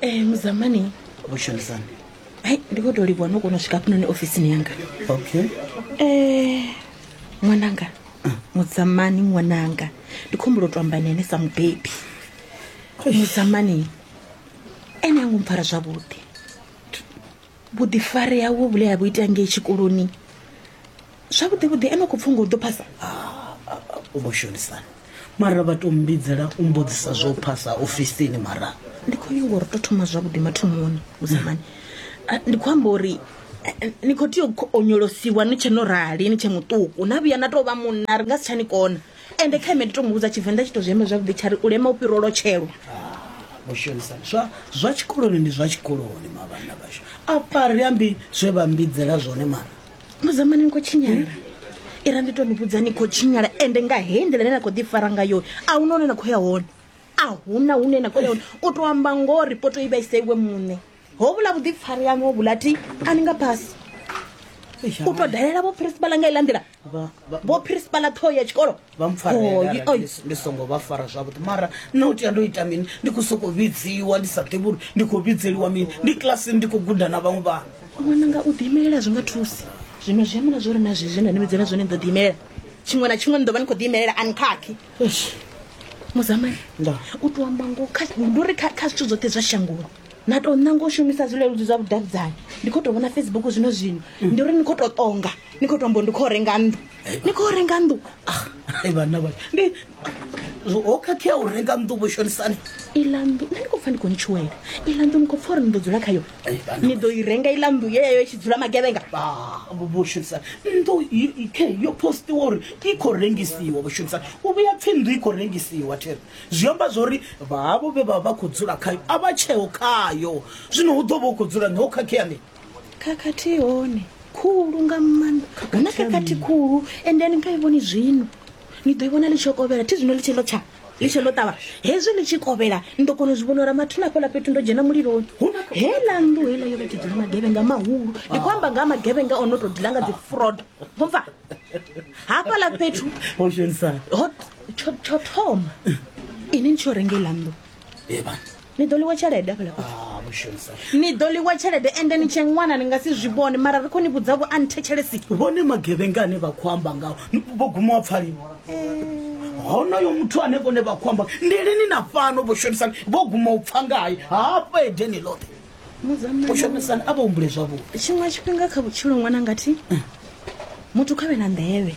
Eh, muzamani vhushumisani hai ndi khou tou livhuwa no kona u swika hafhanoni ofisini yanga okay Eh, ṅwananga mudzamani ṅwananga ndi khou humbula u tou amba nene sa mubebi mudzamani ene ango mpfara zwavhuḓi vhuḓifari hawe vhule ha vhu ita ngei tshikoloni zwavhuḓi vhuḓi ene khou pfunga u ḓo phasa u vho shonisana mara vha to mbidzela u mbodzisa zwo phasa ofisini mara ndi khou nyanga uri to thoma zwavhuḓi mathomoni musamani ndi khou amba uri ni khou tea u onyolosiwa ni tshe no rali ni tshe muṱuku na vhuya na tou vha munna ri nga si tsha ni kona ende kha ime ndi to mu vhudza tshivenḓa tshi to zwi amba zwavhuḓi tsha ri u lema u fhira u lotshelwa mushumisani zwa zwa tshikoloni ndi zwa tshikoloni mavhana vhashu apa ri ambi zwe vha mbidzela zwone mara muzamani ni khou tshinyala ira ndi to ni vhudza ni khou tshinyala ende nga hei nḓila ine na khou ḓifara ngayo a hu na hune na khou ya hone a hu na hune na khou ya hone u tou amba ngoho ripoto i vhaise iwe muṋe ho vhula vhuḓifari yaṋu ho vhula ti a ni nga phasi u tou dalela vho principal nga iḽa nḓila vho principala ṱhoho ya tshikolo vha mpfarndi songo vha fara zwavhuḓi mara nna u tea ndo ita mini ndi khou sokou vhidziwa ndi sa ḓivhi uri ndi khou vhidzeliwa mini ndi kilasini ndi khou guda na vhaṅwe vhana ṅwananga u ḓiimelela zwi nga thusi zwino zwi amula zwo ri na zwezwi na ni vhidzela zwone ni ḓo ḓiimelela tshiṅwe na tshiṅwe ni ḓo vha ni khou ḓiimelela ani khakhi muzamani u tou amba ngo ndi uri kha zwithu zwoṱhe zwa shangoni na tou ṋanga u shumisa zwileludzi zwa vhudavhidzani ndi khou tou vhona facebook zwino zwino ndi uri ni khou tou ṱonga ni khou tou mbo ndi khou renga nnḓu ni khou renga nnḓu ah, vhanna vha ndi ho khakhea u renga nnḓu vho shonisani iḽa nnḓu nṋe ndi khou pfa ndi khou ntshuwela iḽa nnḓu ni khou pfa uri ni ḓo dzula khayo ni ḓo i renga iḽa nnḓu yeyo i tshi dzula magevhenga vho shonisani nnḓu khe yo postiwa uri i khou rengisiwa vho shonisani u vhuya pfhi nnḓu i khou rengisiwa thero zwi amba zwori vhavho vhe vha vha khou dzula khayo a vha tsheo khayo zwino hu ḓo vha u khou dzula ni ho khakhea ni khakhathi hone khulu nga maanḓa hu na khakhathi khulu ende ni nga i vhoni zwino ni ḓo i vhona ḽi tshi kovhela thi zwino ḽi tshi ḽo tsha ḽi tshi ḽo ṱavha hezwi ḽi tshi kovhela ni ḓo kona u zwi vhona uri mathina afho ḽa fhethu ndo dzhena muliloni hela nnḓu hela yo vha tshi dzula magevhenga mahulu ndi khou amba nga ha magevhenga o no tou dila nga dzi frodo mupfa hafhaḽa fhethu tsho thoma ini ni tsho renga iḽa nnḓu ni ḓo ḽiwa tshelede afhaḽa ah, ni ḓo ḽiwa tshelede ende ni tshe ṅwana ni nga si zwi vhone mara ri kho ni vhudza vho a ni thetshelesi vhone magevhenga ane vha khou amba ngao vho guma wa pfaliwa honoyo muthu ane vhone vha khou amba ndi lini na fhano vho shonisani vho guma u pfa ngaye hafha edeni ḽoṱhe mushumisani a vha humbule zwavhuḓi tshiṅwe tshifhinga kha vhutshilo ṅwana ngathi muthu kha vhe na nḓevhe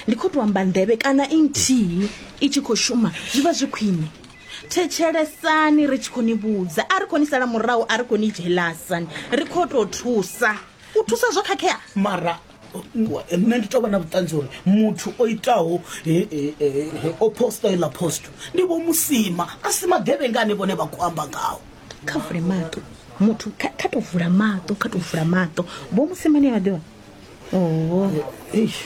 ndi khou tou amba nḓevhe kana i nthihi i tshi khou shuma zwi vha zwi khwine thetshelesani ri tshi khou ni vhudza a ri khou ni sala murahu a ri khou ni dzhelasani ri khou tou thusa u thusa zwo khakhea mara nṋe ndi tovha na vhuṱanzi uri muthu o itaho o posta iḽa posto ndi vho musima a si magevhengani vhone vha khou amba ngawo kha vule maṱo muthu kha kha to vula maṱo kha to vula maṱo vho musimane a vha ḓivha oho eish